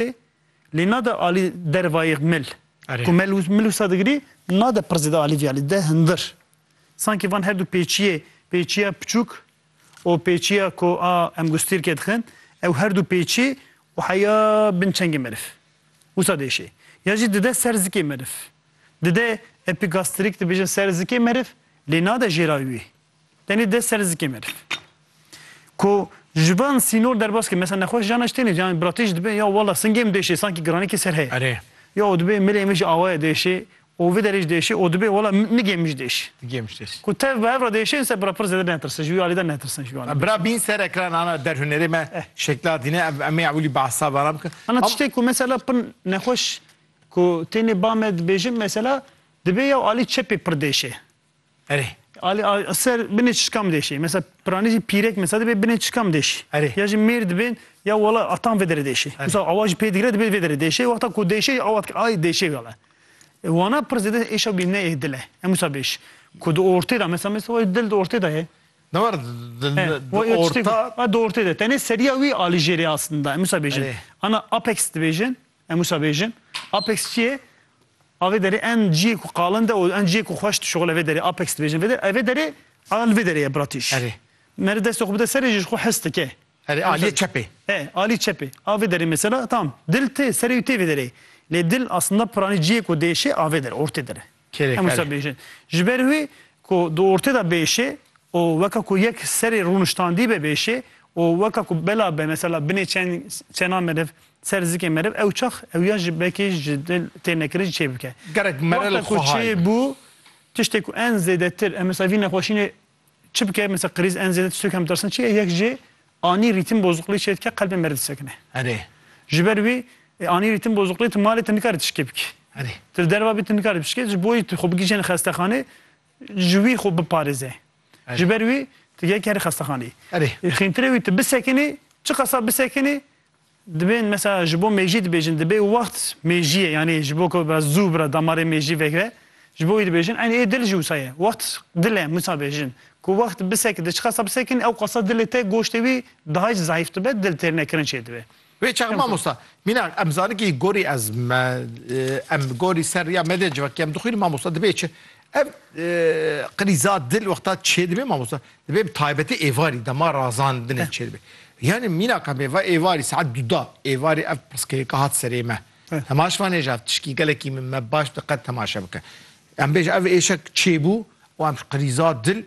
Alî lê nade Alî der vayîr mil. Ku mil û mil wisa digirî nade pir zêde Alî vî Alî de hindir. Sankî van her du pêçîyê pêçîya piçûk û pêçîya ku a em gustîrkê dixin ew her du pêçî û heya bin çengê meriv. Wisa diêşê. Ya jî dide ser zikê meriv. Dide epigastrîk dibêjin ser zikê meriv lê nade jêra wî. Tenê dest ser zikê meriv. Ku ji van sînor derbas ke mesela nexweş jana ji têne jana biratê jî dibe ya wela singê min diêşê sankî giranekê ser heye. Erê. Ya û dibê milê min jî awaye diêşê û vê derê jî diêşê û dibê wela nigê min jî diêşê. Nigê min jî diêşê. Ku tev bi hev re diêşê inse bira pir zêde netirse ji wî alî de netirsin ji wî alî. Bira bîn ser ekran ana der hunerê me şekla dîne ev em ê ewilî behsa vanan bikin. Ana tiştê ku mesela pir nexweş ku têne ba me dibêjin mesela dibê ya û alî çepê pir diêşê. Erê. Ali a ser binê çişka mi deşê. Mesela piranê jî pîrek mesela dibê binê çişka mi deşî. Erê. Ya jî mêr dibên ya wala atan vê derê deşê. Mesela awa jî pê digire dibê vê derê deşê. Wexta ku deşê jî awa dike ay deşê gele. Wana pir zêde êşa bî ne ê dile. Em wisa bêş. Ku di ortê de mesela mesela wayê dil di ortê de ye. Ne war di orta. Di ortê de. Tenê seriya wî alî jêrê aslında. Em wisa bêjin. Ana apex dibêjin. Em wisa bêjin Apex çi ye? A vê derê em ciyê ku qalin de û em ciyê ku xweş dişuxile vê derê Apex dibêjin. Vê derê vê derê a li vê derê ye bratîş. Erê. Meri destê xwe bide serê jî ji xwe hez dike. Erê aliyê çepê. E alî çepê a vê derê mesela tam dil tê serê wî tê vê derê lê dil aslında piranî ciyê ku dêşê a vê derê ortê derê. Kêrê Hemû ser. bêjin. Ji ber wî ku di ortê de bêşê û weke ku yek serê rûniştandî be bêşê û weke ku bela be mesela binê çen çena meriv ser zikê meriv ew çax ew ya ji bekê ji dil tê nekirî jî çê bike. Gerek merel Wexta ku xwe hay çê be. bû tiştê ku en zêdetir em mesela vî nexweşînê Çi bike mesela kriz en zêde tiştê ku em dirasin çi ye? Yek jê anî rîtim bozuqlî çê dike qelbê me li disekine. Erê. Ji ber wî e, anî rîtim bozuqlî tu malê te nikare tişkê bikî. Erê. Tu li derva bî tu nikare bişkê ji boî tu xwe bigihîjîne xestexanê ji wî xwe biparêze. Ji ber wî tu yek herî xestexaneyî. Erê. Xîntirê wî tu bisekinî, çi qasa bisekinî Dibên mesela ji bo mêjî dibêjin dibê wext mêjiyê yanî ji bo ku bira zû bira damarê mêjî vegre ji bo wî dibêjin eynî ê dil jî wisa ye wext dil e wisa bêjin ku wext bisek di çiqasa bisekin ew qasa dilê te goştê wî daha jî zayîf dibe dil têr ne kirin çêdibe. Wê çax mamosta mînak em zaniki gorî ez me em gorî ser riya me de civakî em dixwînin mamosta dibê çi Ev krîza dil wexta çêdibe mamosta dibe bi taybetî êvarî dema razandinê çêdibe. Yanî mîna ka mêva êvarî saet duda êvarî ev pirsgirêka hat serê me. Temaş vanê ji ev tişkî gelekî min me baş diqet temaşe bike. Em bêje ev êşek çêbû û em ji krîza dil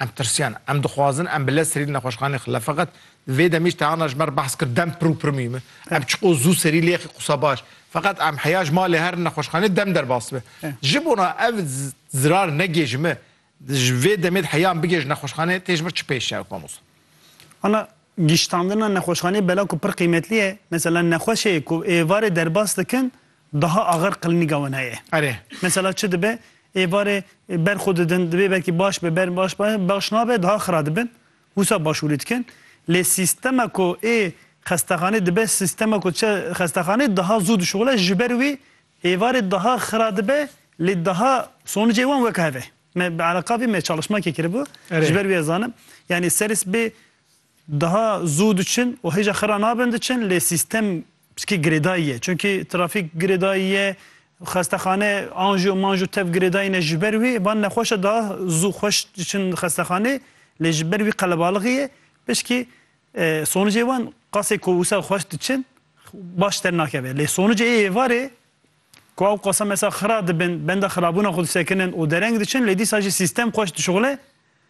Em tirsiyan, em dixwazin em bi lez serî li nexweşxaneyê xile. Feqet di vê demî ji Teyana ji me re behs kir, dem pir û pir mûhîm e. Em çiqo zû serî lê yexî qisa baş. Feqet em heya ji malê herin nexweşxaneyê dem derbas dibe. Ji bona ev zirar negê ji me, ji vê demê de heya em bigê ji nexweşxaneyê tê ji vir çi pêş çav mamosta? Ana, giştandina nexweşxaneyê bela ku pir qîmetli ye. Mesela nexweşê ku êvarê derbas dikin, Daha axir qilmîga wan heye. Erê. Mesela çi dibe, ê barê ber xwe didin, divê belkî baş be, ber baş be, baş nabe, daha xira dibin, wisa başûrî dikin. Lê sîstema ku ê xestexanê dibe, sîstema ku diçe xestexanê, daha zû dişuxile, ji ber wî ê barê daha xira dibe, lê daha sonicê wan weke heve. Me bi Ereqa vê me çalişmakê kiribû, ji ber wî ez zanim. Yanî serê sibê daha zû diçin û hêja xira nabin diçin, lê sîstem Piskî girêdayî ye. Çimkî trafîk girêdayî ye, xestexane anjo manjo tev girêdayî ne ji ber wî van nexweş e daha zû xweş diçin xestexanê lê ji ber wî qelebalixî ye. Pişkî sonicê wan qasê ku wisa xweş diçin baş dernakeve. Lê sonicê ê êvarê ku ew qasa mesela xira dibin, benda xirabûna xwe disekinin û dereng diçin lê dîsa jî sîstem xweş dişuxile.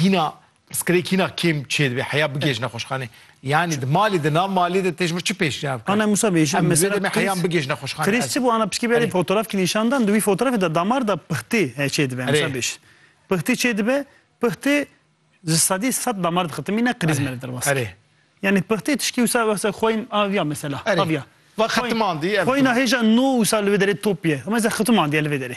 Hîna pirsgirêk hîna kêm çê dibê heya bigêj nexweşxanê. Yanî di malê de na malê de tê ji vir çi pêşniyar bikin? Ana Musa bêjim Em mesela dibê heyan bigêj nexweşxanê. Krîs çi bû ana pişkî berê fotoğraf kî nîşan dan di wî fotoğrafê de damar de pixtê he çê dibe Musa bêj. Pixtê çê dibe pixtê ji sedî sed damar dixe ti mîne krîs me li derbas kir. Yanî pixtê tişkî wisa wisa xweyn aviya mesela aviya. Xweyna hêja no wisa li vê derê top ye. Mesela xetimandî ye li vê derê.